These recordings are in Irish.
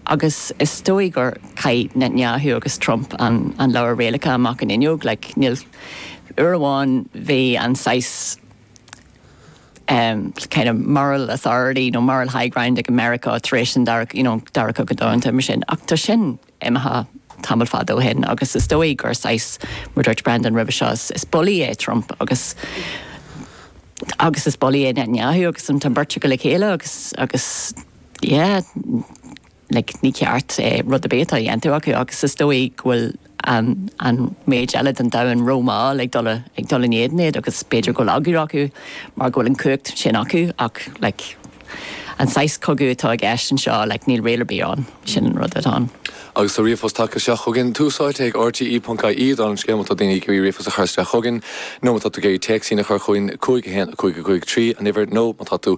Agus is dóigh gur chaith Netanyahu agus Trump an leabhar rialacha amach an fhuinneog, like, níl, uair amháin bhí an saghas ehm, kind of moral authority nó moral high ground ag Meiriceá tar éis an dara, you know, Dara Cogadh Domhanda mar sin ach tá sin imithe tamall fada ó shin agus is dóigh gur saghas, mar dúirt Breandán roimhe seo, is bulaí é Trump agus agus is bulaí é Netanyahu agus an, tá an beirt acu le chéile agus, agus. yeah like ní ceart eh rud ar bith atá a dhéanamh acu agus is dóigh go bhfuil an an méid eile den domhan ró mhall ag dul ag dul in éadan iad agus b'fhéidir go bhfuil eagla acu mar go bhfuil an cumhacht sin acu ach like an saghas cogadh atá i gceist anseo like níl riail ar bith ann sin an rud atá ann. Agus tá ríomhphost tagtha isteach chugainn, tús áite ag RTÉ.ie dála an scéil má tá daoine ag iarraidh ríomhphost a chur isteach chugainn nó má tá tú ag iarraidh téacsáin a chur chugainn, 51553 an uimhir, nó má tá tú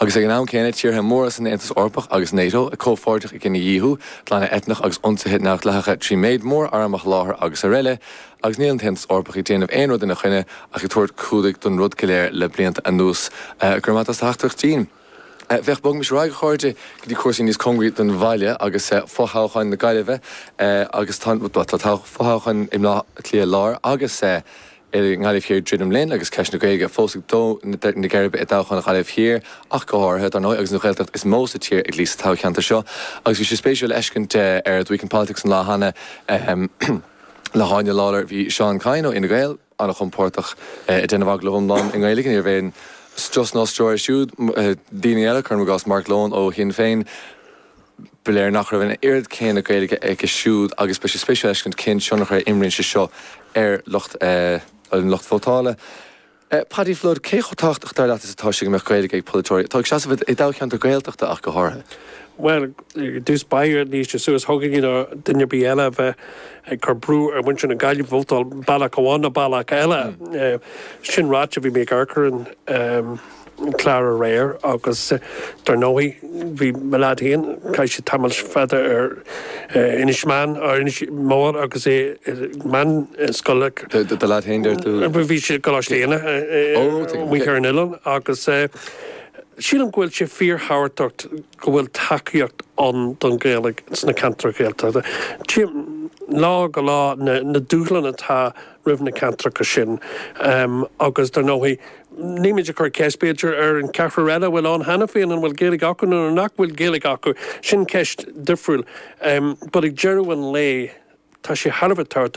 Agus ag an am céanna, tíortha móra san Aontas Eorpach agus Nato comhpháirteach i gcinedhíothú, glanadh eitneach agus ionsaithe neamhdhleathacha trí mhéid mór arm a sholáthar agus aroile, agus níl an tAontas Eorpach ag déanamh aon rud ina choinne ach ag tabhairt clúdaigh don rud go léir le blianta anuas. Go raibh maith agat as do theachtaireacht Jean. Féach, bogaimis ar aghaidh, a chairde, go dtí cúrsaí níos cóngaraí don bhaile agus fothoghcháin na Gaillimhe agus tá an fothoghchán i mBleá Cliath Láir agus, i nGaillimh Thiar ag druidim linn agus ceist na Gaeilge fós ag dó na geirbe i dtoghchán Ghaillimh Thiar ach go háirithe, dar ndóigh, agus an Ghaeltacht is mó sa tír ag luí sa toghcheantar seo agus bhí sé spéisiúil a fheiscint ar The Week in Politics an lá cheana le hÁine Lawlor, bhí Seán Kyne ó Fhine Gael an-chompordach ag déanamh agallaimh iomlán i nGaeilge, níorbh aon strus ná stró air siúd. Daoine eile, cuirim i gcás Mark Lohan ó Shinn Féin. Ba léir nach raibh an oiread céanna Gaeilge aige siúd agus beidh sé spéisiúil a fheiscint cén tionchar a imríonn sé seo ar lucht an lucht vótála. Paddy Flood, cé chomh tábhachtach dar leat is atá sé go mbeadh Gaeilge ag polaiteoirí atá ag seasamh i dtoghcheantar Gaeltachta ach go háirithe? Bhuel, ar dtús báire, níl sé suas chugainne nó duine ar bith eile a bheith ag cur brú ar mhuintir na Gaillimhe vótáil bealach amháin nó bealach eile. Sin ráite, bhí mé ag amharc ar an. clár aréir agus dar ndóigh bhí mo leaid féin, chaith sé tamall fada ar Inis Meáin, ar Inis Mór agus é i meánscoil. Do leaid féin deir tú? Bhí sé i gColáiste Éanna amuigh ar an oileán agus sílim go bhfuil sé fíorthábhachtach go bhfuil tacaíocht ann don Ghaeilge sna ceantair Ghaeltachta. Tchím lá go lá na dúshláin atá roimh na ceantracha sin. Agus dar ndóigh, nílimid ag cur ceist, b'fhéidir, ar an cheathrar eile a bhfuil ann cheana féin an bhfuil Gaeilge acu nó nach bhfuil Gaeilge acu. Sin ceist difriúil. But ag deireadh an lae, tá sé thar a bheith tábhachtach,